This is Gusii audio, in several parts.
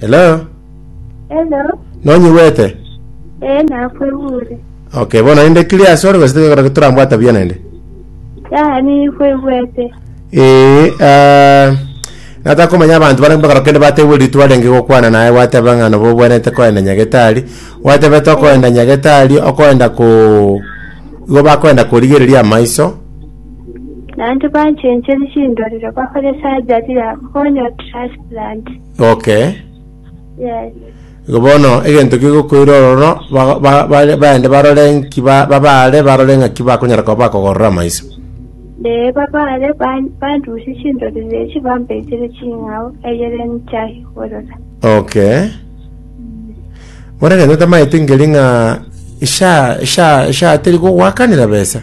Hello? Hello. Nonyigwete? Ee, nakwegure. Okay, bono naende clear ase ore gose tekero torambwata buya naende. Ya, nikwegwete. Ee, ah, nataka komanya abanto bare mpaka rokende batebwe ritwa renge gokwana naye gwateba ng'a nobo obwenerete koenda nyagetari gwatebe tokoenda nyagetari okoenda ko igo bakoenda korigereria amaiso Naende banchencheri chindorero bakore surgery yabo, konya trust. Blood. Okay. Yes. Igo bono egento kegokoira ororo ba- ba- ba- baende barore nki ba- babaare barore ng'aki bakonyara koba bakogorora amaiso. Lee babare ban- bandusie chindorere echi bambeisire ching'ao eyere nchahigorora. Okay. Bono egento tamaete nkeri ng'a esha esha esha teri kogwakanera besa.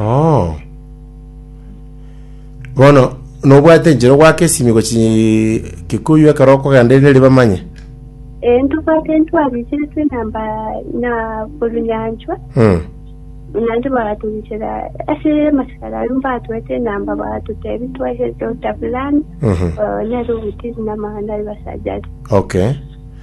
Oo. Bono nobwate enchera ogwake esimi gochi Kikuyu ekero okogenda erinde ribe manye? Eh, ntobwate ntwarigeretwe na mba na Orunyanchwa, Hmm. buna nde bagatorichera ase amasikara aria mbatoete enamba bagatotebi twache Dr. Fulani, Mhm. eh, nere ogotiri namang'ana aria basacha aria. Okay.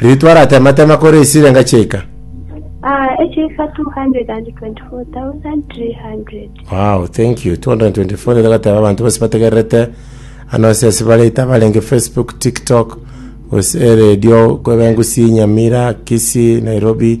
Ritwara atematema kore esirenga chiaika. Wow, thank you. 224 nigo agateba abanto bonsi bategererete ano ase ase bare itabarenge Facebook, TikTok, gose radio kweba engusi Nyamira, Kisii, Nairobi,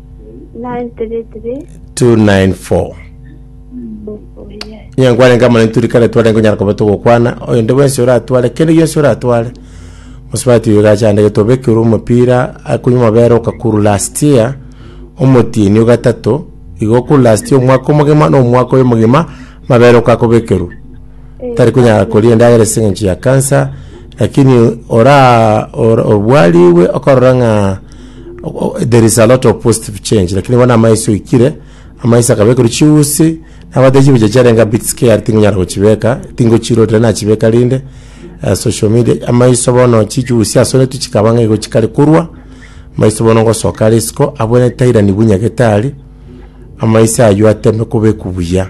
294 onye nkwane nkama nituri kare tware nkonyara koba togokwana oyo nde bwensi oratware kende gionsi oratware mosubati oyo gachande getobekire omopira akonywa amabere okakuru last year omotieni ogatato igo okuru last year omwaka omogima na omwaka oyo omogima amabere okakobekerwa tari konyara koria endagera ase eng'encho ya cancer lakini ora ora- obwariwe okarora ng'a there is a lot of positive change lakini bono amaiso oikire amaiso akabekerwa chiusi nabate chibucha chiarenga bit scared tingonyara gochibeka tingochirorire nachibeka rinde uh, social media amaiso bono chichiusi asonetu chikaba ng'a igo chikare korwa amaiso bono ngosoka are isiko abwene tairani bunya getari amaiso aywo ateme kobeku buya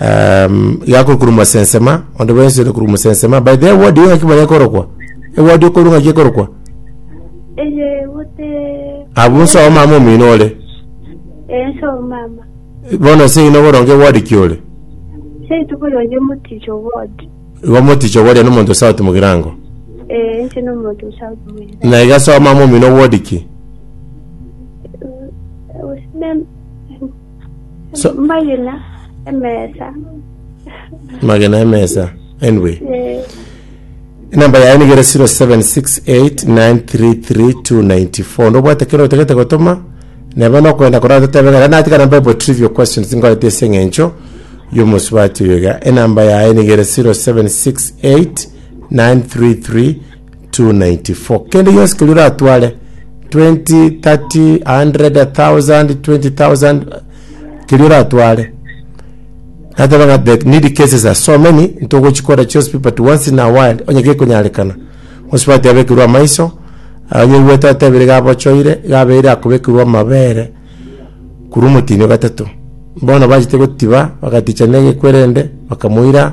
um, gakore korwa mosensema onde bwensi ore korwa mosensema by the word yo ng'aki manya ekorokwa eward okoru ng'aki ekorokwa eye bote abu nso omama omino ore enso mama bono nse ino boronge ward ki ore seitu boronge moticho ward igo moticho boria nomonto south mogirango eh nche no muntu usauti mwira na iga so omama omino ward ki usime So- Magina emesa. magena emesa anyway Eh, enamba yaye nigere 0768933294 ndobwate kero otegete gotoma nebe nokwenda korora totebe ng'a natika namba ebo trivial questions ngorete ase eng'encho y'omosubati oyo iga enamba yaye nigere 0768933294 294 kende gionsi keria oratware 20 30 100 1000 20000 keria oratware nateba ng'a the needy cases are so many ntogochikora chionsi pi but once in a while onye gekonyarekana osubati abekerwe amaiso onye oigwete otebire iga abochoire iga abeire akobekerwa amabere korwa omotini o gatato bono bachete gotiba bagaticha na egekwerende bakamoira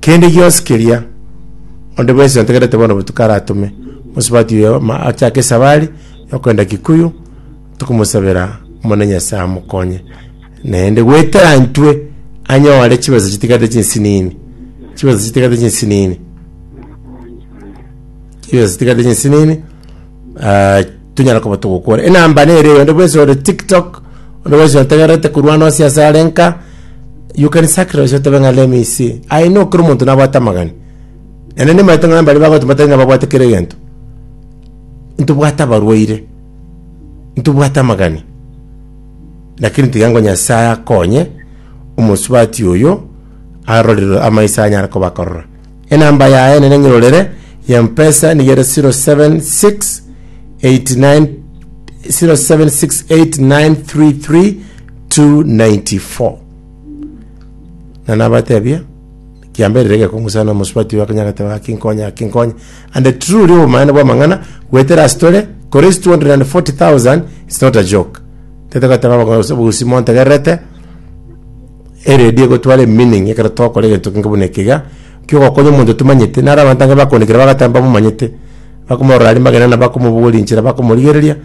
Kende gionsi keria onde bwensi ontegerete bono botuko aratome mosubati oyo ma- achake esabari yokoenda Kikuyu, tokomosabera Omonene Nyasae amokonye naende goetera intwe anyore chibesa chitigarete chinsinini, chibesa chitigarete chinsinini, chibesa chitigarete chinsinini, Ah, tonyara koba togokora enamba nere eyo onde bwensi ore tiktok onde bwensi otegerete korwana ase ase are nka you can sacrifice otebe ng'a let me see i know kera omonto nabwate amagani ene nimaete ng'a mbare bagoteba batari ng'a babwate kera egento ntobwate abarwaire ntobwate amagani lakini tiga ng'a nyasaye akonye omosubati oyo arorire amaiso anyare koba akorora Enamba yaye nere ng'irorere ya mpesa nigo ere 0768933294 na nabatebia kiamberire gekong'usa na omosubati oyo akanyare goteba gaki nkonye gaki nkonye and the true oria obomaene bwa amang'ana goetera ase tore kore is 240000 is not a joke tete goteba abagore gose obogusi montegererete Eredio egotwara emeaning ekero togokora egento kenge buna ekiga, ekio ogokonya omonto tomanyete, naro abanto ange bakoonekire bagateba mbamomanyete, bakomorora aria magena na bakomobogoria enchera bakomorigereria,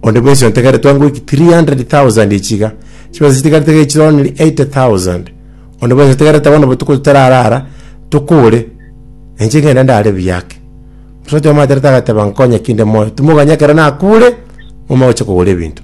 onde bwensi ontegerete twangoiki 300,000 echi iga, chibesa chitigarete iga echi only 80,000, onde bwensi otegerete bono botuko totarara ara, tokore, na inche ngende ndare buya ake. Omonto oyomo atarete agateba nkonye ki inde moyo, timokoganya ekero nakure, ng'umanye gocha kogora ebinto.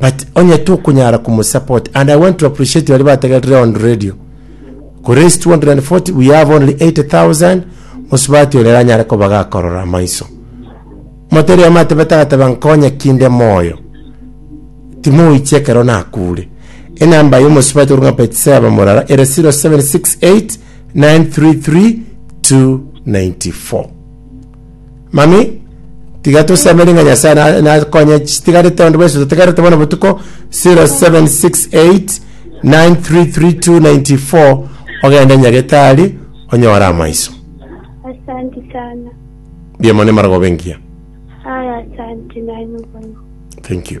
but onye tokonyara komosupport and i want to appreciate baria bategerire on radio koraise 240 we have only 80000 mosubati oyo eranyare koba gakorora amaiso moteri omo atebete agateba nkonye kinde moyo timoiche ekero nakure enamba y'omosubati orunga betseba morara ere 0768 933 294 Mami, tiga tosemeri ng'a Nyasae na- nakonye chitigarete onde bwensi totigarete bono botuko 0768933294 ogende Nyagetari onyore amaiso. Asante sana. Mbuya mono Emaragoba engiya. Aya asante naye mubona. Thank you.